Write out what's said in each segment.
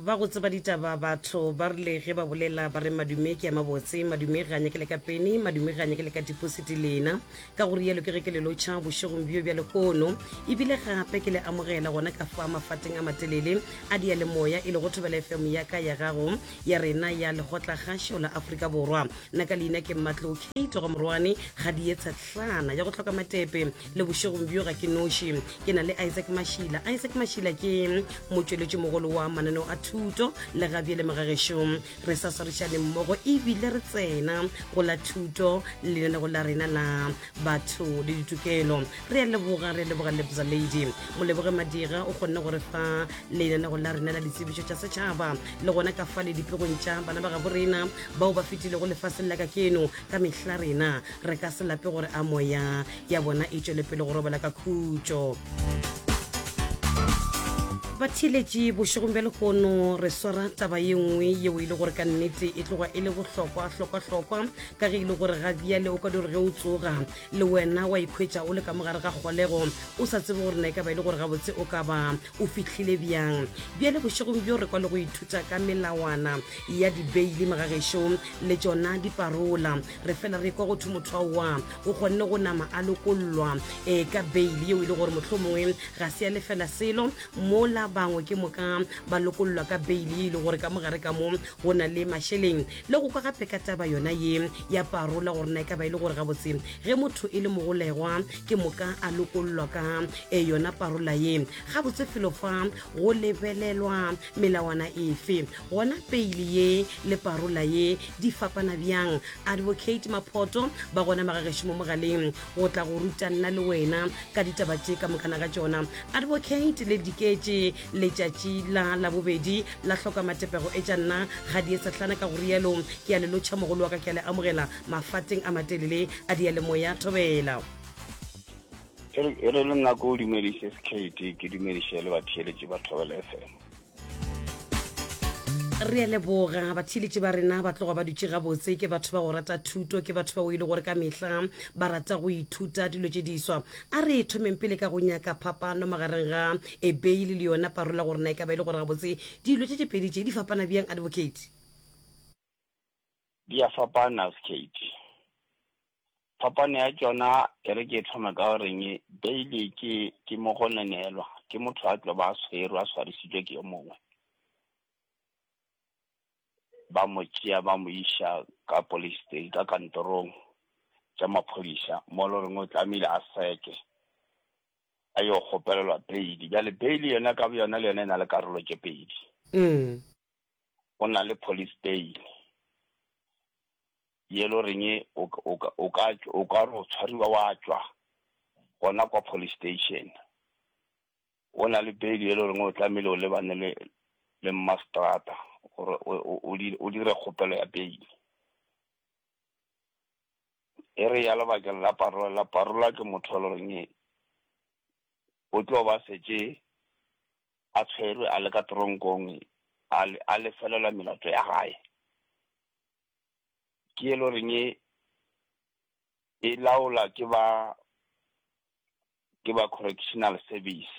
ba go tseba ditaba batho ba rile ge ba bolela ba re madume ke ya mabotse madume ga nyake le ka peni madume ga nyake le ka dipositi lena ka gore yalo ke ge ke le lotšha bošegong bjo bja lekono ebile gape ke le amogela gona ka fa mafateng a matelele a di ya le moya e le go thobela fm ya ka ya gago ya rena ya legotla gašo la aforika borwa nna ka leina ke mmatlo kate go morwane ga di etsha tlana ya go tlhoka matepe le bošegong bjo ga ke noši ke na le isaac mašila isaac mašila ke motšweletši mogolo wa mananeo a thuto le ga bjele magagešo re sa swarišane mmogo ebile re tsena go la thuto lenanego la rena la batho le ditokelo re a leboga re a leboga lebza lady moleboge madira o kgonne gore fa lenanego la rena la ditsebišo tša setšhaba le gona ka fa le dipegong tša bana ba gabo rena bao ba fetilego lefaseng la ka keno ka mehla rena re ka se lape gore a moya ya bona e tšwele pele go robela ka khutšo batheeletši bošegong bja lehono re swara taba ye nngwe yeo e le gore ka nnete e tloga e le bohlokwa hlokwahlokwa ka ge e le gore ga bjale o ka di gore ge o tsoga le wena wa ikhwetša o le ka mogare ga kgolego o sa tsebe gore na e ka ba e le gore gabotse o ka ba o fitlhile bjang bjale bošegong bjo re kwa le go ithuta ka melawana ya dibeile magagešong le tšona diparola re fela re kwa go thwe motho aowa o kgonne go nama a lokollwa um ka baile yeo e le gore motlho mongwe ga se ya lefela selo mola bangwe ke moka ba lokollwa ka baile ye e le gore ka mogare ka mo go na le mašeleng le go kwa gape ka taba yona ye ya parola gore na e ka ba e le gore gabotse ge motho e le mogolegwa ke moka a lokollwa ka e yona parola ye gabotse felo fa go lebelelwa melawana efe Gona peile ye le parola ye di fapana bjang? Advocate Maphoto ba gona magagešo mo mogaleng go tla go ruta nna le wena ka ditaba tše ka mokana ga tšona. Advocate le diketše letšatši la labobedi la hloka matepego etša nna ga di esahlana ka go rialo ke a le lotšha mogolo wa ka ke a le amogela mafateng a matelele a diyalemoya thobela. E re le nna ko dumediše Skate ke dumediše le batheeletši ba Thobela FM. re a leboga batheeletši ba rena ba tloga ba dutše gabotse ke batho ba go rata thuto ke batho ba o ile gore ka mehla ba rata go ithuta dilo tše diswa a re thomeng pele ka go nyaka phapano magareng ga ebei le le yona parola gore na e ka ba e le gore gabotse dilo tše tše pedi tše di fapana bjang advocate Di a fapana Skate. Phapano ya tšona e re ke e thome ka go reng, beile ke ke mo go nenelwa ke motho a tlo ba a tshwerwe a tshwarisitswe ke yo mongwe. Ba mo tšea ba mo iša ka police sta-, ka kantorong tša maphodisa mo e lo reng o tlamehile a seke, a yo kgopelelwa beile. Bjale beile yona ka boyona le yona e na le karolo tše pedi. go na le polisteine ye lo reng o ka, o ka, o ka, o ka re o tshwariwa wa tšwa gona kwa police station. Go na le beil ye lo reng o tlamehile o lebane le, le mmaseterata gore o, o, o di, o dire kgopelo ya beil. E re ya lebakeng la parola, parola ke motho yo lo reng, O tlo ba šetše a tshwerwe a le ka teronkong a, a lefelelwa melato ya gae. Ke e le goreng e, e laola ke ba, ke ba Correctional Service.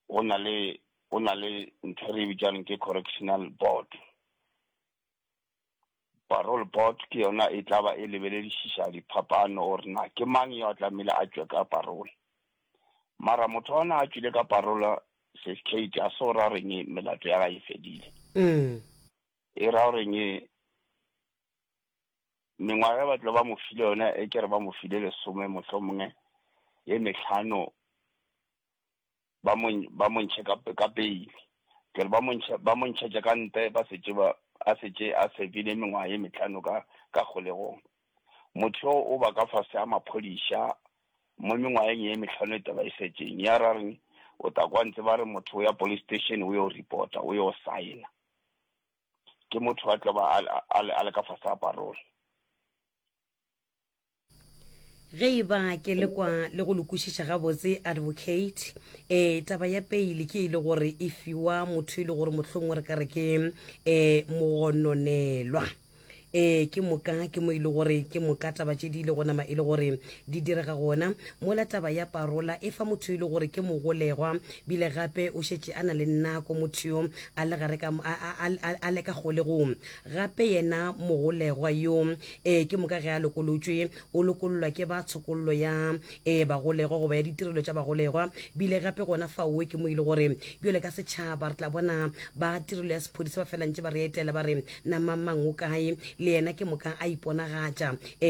Go na le, go na le ntho e re e bitšang ke Correctional Board. Parole board ke yona e tla ba e lebeledišiša diphapano gore na ke mang yo a tlamehile a tšwe ka parole. Mara motho a na a tšwile ka parole Sis Kate a se go ra goreng melato ya gae e fedile. E ra goreng mengwaga e ba tlo ba mo file yona e ke re ba mo file lesome mohlomongwe ye mehlano ba mo ntš-, ba mo ntšhe ka p-, ka pele, bjale ba mo ntšhe, ba mo ntšhetša ka ntle ba šetše ba, a šetše a servile mengwaga ye mehlano ka, ka kgolegong. Motho yo o ba ka fase ga maphodisa, mo mengwageng ye mehlano e tee e šetšeng, ya ra re o tla kwa ntse ba re motho o ya police station o yo reporta, o yo sign-a, ke motho a tlo ba a l-, a le, a le ka fase ga parole. Ge e ba ke le kwa le go lokušiša gabotse, Advocate, eh, taba ya peile ke e le gore e fiwa motho e le gore mohlongwe re ka re ke eh, mogononelwa. Eh, ke moka ke mo e le gore ke moka taba tše di ile go nama e le gore di direga gona mola taba ya parola e fa motho e le gore ke mogolegwa bile gape o šetše a na le nako motho yo a le gare ka a, a, a, a le ka kgolegong gape yena mogolegwa yo ee ke moka ge a lokolotšwe o lokololwa ke ba tshokollo ya e bagolegwa goba ya ditirelo tša bagolegwa bile gape gona faowe ke mo ile gore bjole ka setšhaba re tla bona ba tirelo ya sephodisa ba felantše ba re etela ba re na mamang o kae le yena ke moka a iponagatša ee